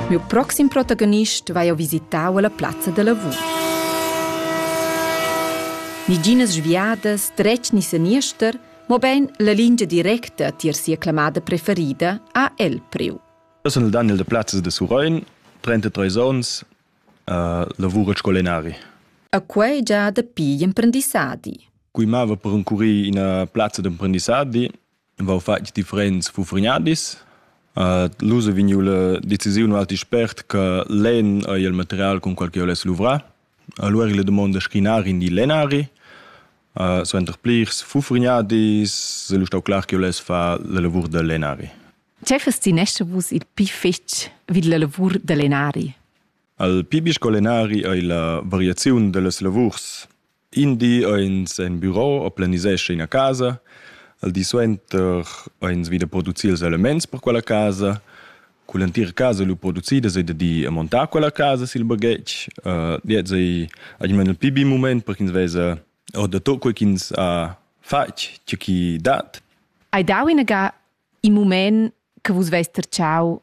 Miu proxim protagonist vai ho visitau alla plazza da lavur. Niginas sviadas, dretg ni seniester, mobein la lingia directa tier sia clamada preferida ha el priu. Eu sun il Daniel de Plazzas de Surein, 33 ons, uh, lavuro scolenari. A quei già dapi gl'emprendissadi. Cui mava per incurir ina plazza d'emprendissadi, vau fatg differents fufrignadis. Uh, L'uso vegniu la decisiun alti spert che l'en ei il material con qual che oless luvrar. Allora la domanda scrinari in di lenari. Uh, suenter plirs fufrignadis se lu stau clar che oless fa la lavur da lenari. Tgei fes ti nesce vus il pi fetg vid la lavur da lenari? Al pi bisco lenari ei la variaziun dellas lavurs In di ins en büro o planisescha ina casa, al di suenter ins vi da producir ils elements per quella casa. Cun l'entira casa lu producida sai da dir e montar quella casa sil baghetg. Uh, diet sai almeno il pi bi mument per ch'ins vesa o da tot quei ch'ins ha fatg, tge chi dat. Hai dau inaga in mument che vus veis tertschau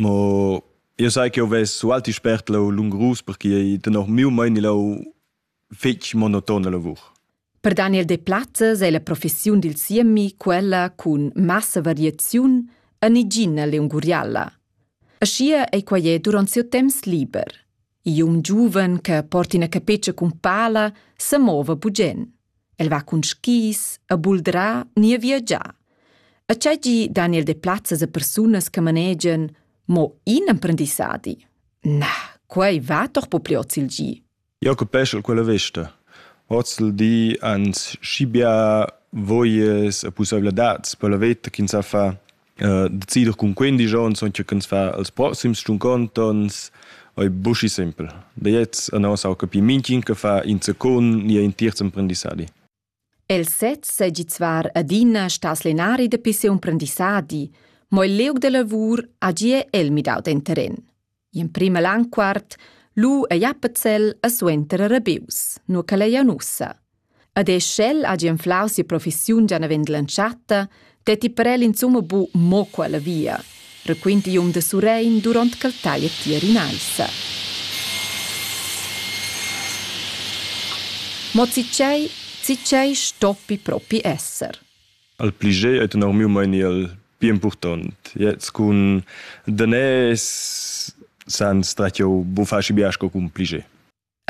Mo io sai che ho ves ualti spert lau lungrus perché tenor miu meini lau fetg monotona lavur. Per Daniel Deplazes è la professiun dil siemi quella cun massa variaziun en igina leungurialla. Aschia ei quei duront siu temps liber. E un giuven che porta ina capetscha cun pala se mova bugen. El va cun skis, a buldra ni a viagiar. A tgei gi Daniel de plazzas a persunas che manegian mo in emprendissadi. Na, quei va doch po pli oz il gi. Jacob Peschel quella vesta. Oz il di ans schi bia voies e pussaivladads per la veta ch'ins sa fa decider cun quindici onns che can fa als proxims cinquanta onns è buschi simpel. Da jetzt an aus auch capi minchin che fa in secund ni in terz emprendissadi. El sez segi zvar adina stas lenari de pisse emprendissadi, mo il leug de lavur agie el midau den terren. In prima lanquart lu ei Appenzell e suenter rebius, nur ch'el ei ussa. Ed e sch'el hagi enflau sia professiun gia naven dell'entschatta, detti per el insumma bu mo quella via, requinti igl um de Surrein duront ch'el taglia tier in'aissa. Mo zitgei, zitgei stoppi propi esser. al pli gei ei tenor miu meini el pli impurtont. Jetzt cun danès san stretg jeu bufaci bia sco cun pli gei.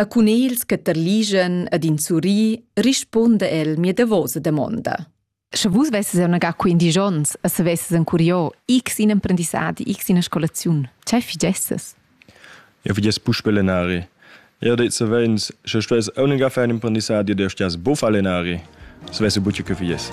A cun ils che terligen ed in surri risponda el mia davosa damonda. Sche vus vesses jau naga qui in digions e se vesses en curio x in emprendissadi, x in scolaziun, ce figesses? Jau vi gest puspè lenari. Jau det savens, sche stuess aunc far in imprendissadi ed stias buffà lenari. Svessi buca che fies.